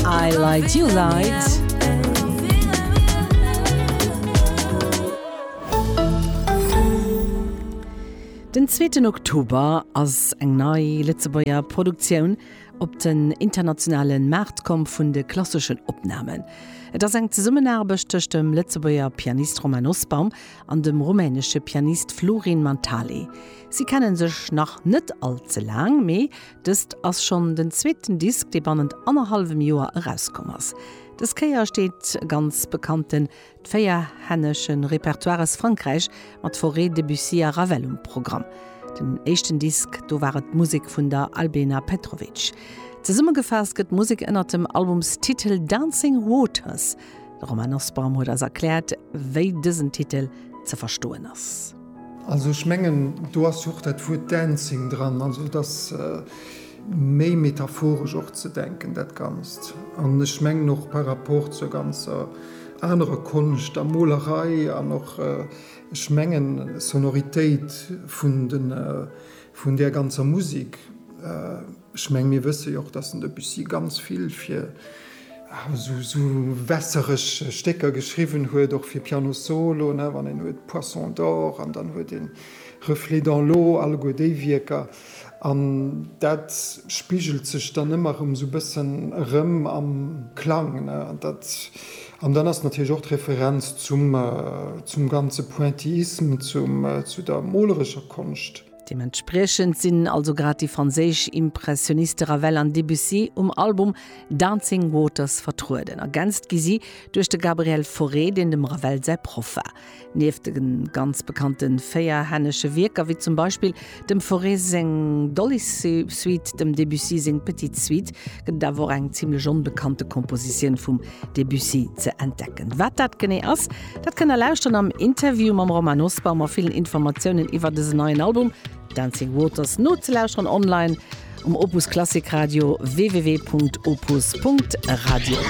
I light you light. Den zweeten Oktober ass eng nei Lëtzebuerger Produktioun op den internationalen Maart komm vun de klasseschen Opnahmen. Et ass eng Zesummenaarbecht tëscht dem Lëtzebuerger Pianist Romain Nosbaum an dem rumänesche Pianist Florin Mantale. Si kennen sech nach net all ze laang, mee Dëst ass schonn den zweeten Disk, dee bannent annerhallwem Joer erauskomm ass. Dës Kéier steet e ganz bekannten d'Véierhännesche Repertoire aus Frankräich mat Fauré, Debussy a Ravel um Programm. Den éischten Disk, do war et d'Musek vun der Albena Petrovic. Zesummegefaasst gëtt d'Musek ënnert dem Albumstitel Dancing Waters. De Romain Nussbaum huet eis erkläert, wéi dësen Titel ze verstoen ass. Also ech mengen, do ass jo och dat Wuert Dancing dran. Also et ass méi metaphoresch och ze denken, dat Ganzt. An ech mengen och par rapport zur ganzer anerer Konscht, der Molerei an och, ech mengen, Sonoritéit vun den, vun där ganzer Musek, Ech meng, mir wësse jo och, datt den Debussy ganz vill fir esou wässereg Stécker geschriwwen huet, och fir Piano Solo, wann een huet Poisson d'or an dann huet een Reflet dans l'eau, alleguer déi Wierker. An dat spigelt sech dann ëmmer erëm esou e bëssen erëm am Klang. An dann ass natierlech och d'Referenz zum ganze Pointillisme, zu der molerescher Konscht. Deementspriechend sinn also grad déi franséisch Impressioniste Ravel an Debussy um Album Dancing Waters vertrueden. Ergänzt gi si duerch de Gabriel Fauré, deen dem Ravel säi Proff war. Nieft de ganz bekannte véierhännesche Wierker, wéi zum Beispill dem Fauré seng Dolly-Suite, dem Debussy seng Petite Suite, gëtt et awer och eng zimlech onbekannte Kompositioun vum Debussy ze entdecken. Wat dat genee ass, Dat kënnt der lauschteren am Interview mam Romain Nosbaum a villen Informatiounen iwwer dësen neien Album Dancing Waters nozelauschteren online um Opus Klassik Radio www.opus.radio.